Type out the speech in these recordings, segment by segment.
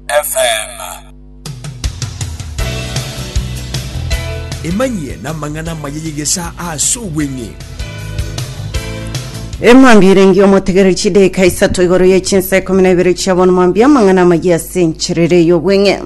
FM. Emanyie namang'ana amaya y'egesaa ase obweng'e. Emwambia ere ngiyo motegereri chideka isato igoro ye chinsa ikumi na ibere chia bono mwambia amang'ana amaya ase encherere y'obweng'e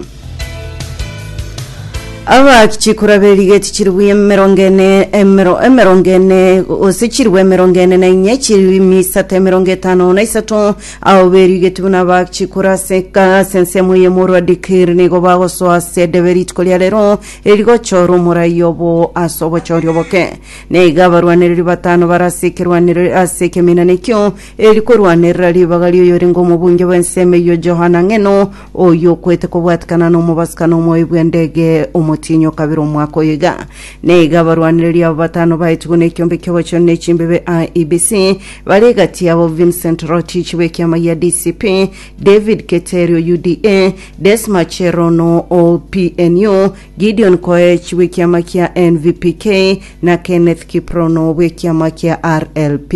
aba chikura berigeti chiribu emerongo ene emero emerongo ene gose chiribu emerongo ene na inye chiribu isato emerongo etano na isato Abwo berigetie buna abachie koraseka ase ensemo y'emorua Dikiri nigo bagosoa ase Edebe rituko ria rero, eri rigochorwa omorai obo ase obochori oboke. Na iga abarwanereri batano bare ase ekerwanero ase ekeminana ekio, eri korwanerera ribaga ri'oyorenge omobunge bw'ensemo eyio Johana Ng'eno, oyio okwete kobwatekana n'omobasikano omoebi bw'endege omotienyi o kabere omwaka oyo iga. Na iga abarwanereri abo batano baetigwe nekiombe ki'ogochenu ne chimbebe IEBC, Bare egati yabo Vincent Rotich bw'ekiama gia DCP, David Keterio UDA, Desma Cherono o PNU, Gideon Koech bw'ekiama kia NVPK na Kenneth Kiprono bw'ekiama kia RLP.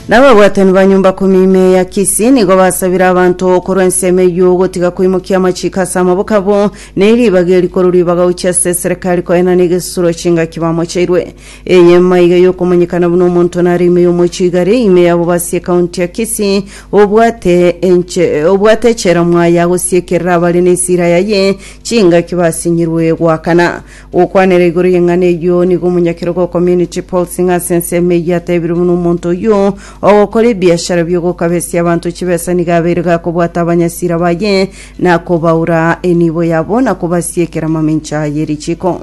Na ababwatani ba nyomba kumi ime ya Kisii nigo basabire abanto korwa ensemo eyio gotiga koimokia amachiko ase amaboko abo ne ribaga eri korwa ribaga gochia ase eserekari koenana egesuro chingaki bamocheirwe. Enyama iga yokomanyekana buna omonto nare ime y'omochigare, ime yabo basi ekaunti ya Kisii, obwate enche obwate echela mwaye agosiekerera abare nesira yaye chingaki basinyirwe goakana. Gokwanera igoro y'eng'ana eyio nigo omonyakerogo o Community Pulse Ng'asi ensemo eyio atebire buna omonto oyio ogokora ebiashara biogokabesia abanto chibesa nigo abeire gakobwata abanyasira baye Na kobaura enibo yabo, na kobasiekera amamincha ye richiko.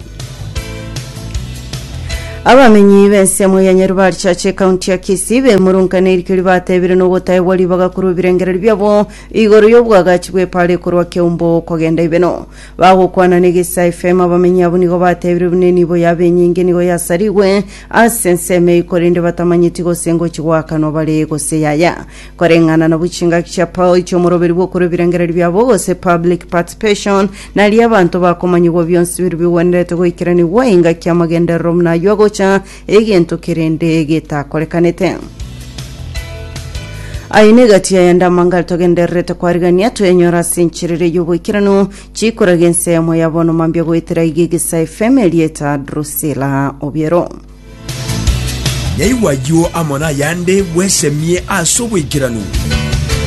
Abamenyi b'ensemo ya Nyarubari Church ekaunti ya Kisii bemurungane erikio ribatebire nogotaegwa ribaga korwa ebirengererio biabo igoro y'obwagachi bw'epara ekorwa Keumbo kogenda Ibeno. Bagokwana n'Egesa FM abamenyi abwo nigo batebire buna enibo yabo enyinge nigo yasarigwe ase ensemo eyio korende batamanyeti gose ngochi goakanwa bare gose yaya. Koreng'ana nabwo chingaki chia Paul chi'omoroberi bw'okora ebirengererio biabo, gose public participation, nario abanto bakomanyigwa bionsi biria bigwenerete goikeranigwa engaki y'amagenderero buna ayio agocha egento kerende getakorekanete. Aye negati yayande amangare togendererete koarigania toyanyora ase encherere y'oboikeranu chikoragia ense yamo ya bono mambia goetera iga egesae fm erieta Drusilla Obiero. Yaigwa ayio amo nayande, bwesemie ase oboikeranu.